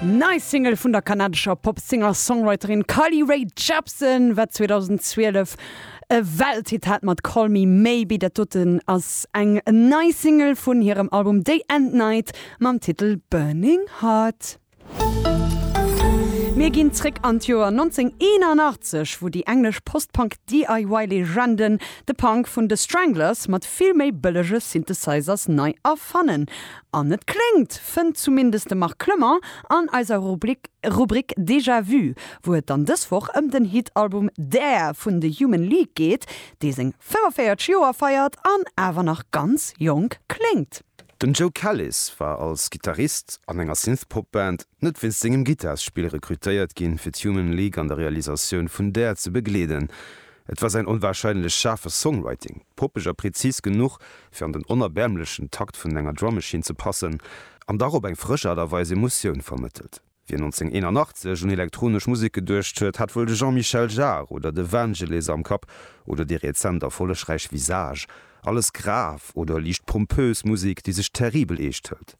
Nei Single vun der kanadescher Pop-Singer-Songwriterin Carly Rae Jepsen, wat 2012 e Welthit hat mat Call Me Maybe. Dat doten ass eng nei Single vun hirem Album Day and Night mam Titel Burning Heart. Mir ginn zréck an d'Joer 1981, wou déi englesch Post-Punk-DIY-Legenden de Punk vun The Stranglers mat vill méi bëllege Synthesizers nei erfannen. An et kléngt, fënnt zumindest de Marc Clement an eiser Rubrik Déjà Vu, wou et dann dës Woch ëm den Hit-Album Dare vun The Human League geet, dee seng 45 Joer feiert an awer nach ganz jonk kléngt. Den Joe Callis war als Gittarist an enger Synthpop-Band Net wéinst sengem Gittarspill rekrutéiert ginn, fir d'Human League an der Realisatioun vun Dare ze begleeden. Et war säin onwahrscheinlech schaarfe Songwriting, poppeg a präzis genuch, fir an den onerbäermlechen Takt vun enger Drum Machine ze passen, an dach op eng frësch Aart a Weis Emotioun vermëttelt. Wien 1981 un elektronesch Musek geduecht huet, hat wuel de Jean-Michel Jarre oder de Vangelis am Kapp, oder déi rezent erfollegräich Visage, alles grav oder liicht pompös Musek, déi sech terribel eescht hëlt.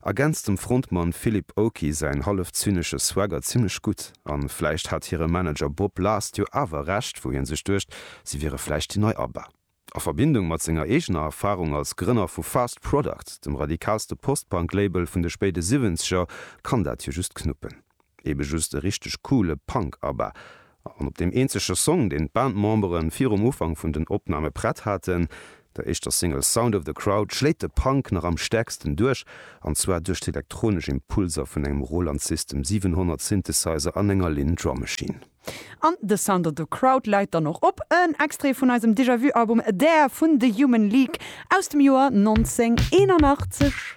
Ergänzt dem Frontmann Philip Oakey säin hallef zynesche Swagger zimmlech gutt. An vläicht hat hire Manager Bob Last jo awer Recht, wou hien sech duecht, si wiere vläicht déi nei Abba. A Verbindung mat senger eegener Erfarung als Grënner vu Fast Product, dem radikalste Post-Punk-Label vun de spéide Siwwenzeger, kann dat jo just knuppen. Eben just e richteg coole Punk Abba. An op deem eenzege Song, deen d'Bandmemberen virum Ufank vun den Opname prett haten, der éischter Single Sound of the Crowd, schléit de Punk nach am stäerksten duerch, an zwar duerch d'elektronesch Impulser vun engem Roland System 700 Synthesizer an enger Linn Drum Machine. An de Sound of the Crowd läit dann och op. En Extrait vun eisem Déjà-Vu Album There vun The Human League aus dem Joer 1981.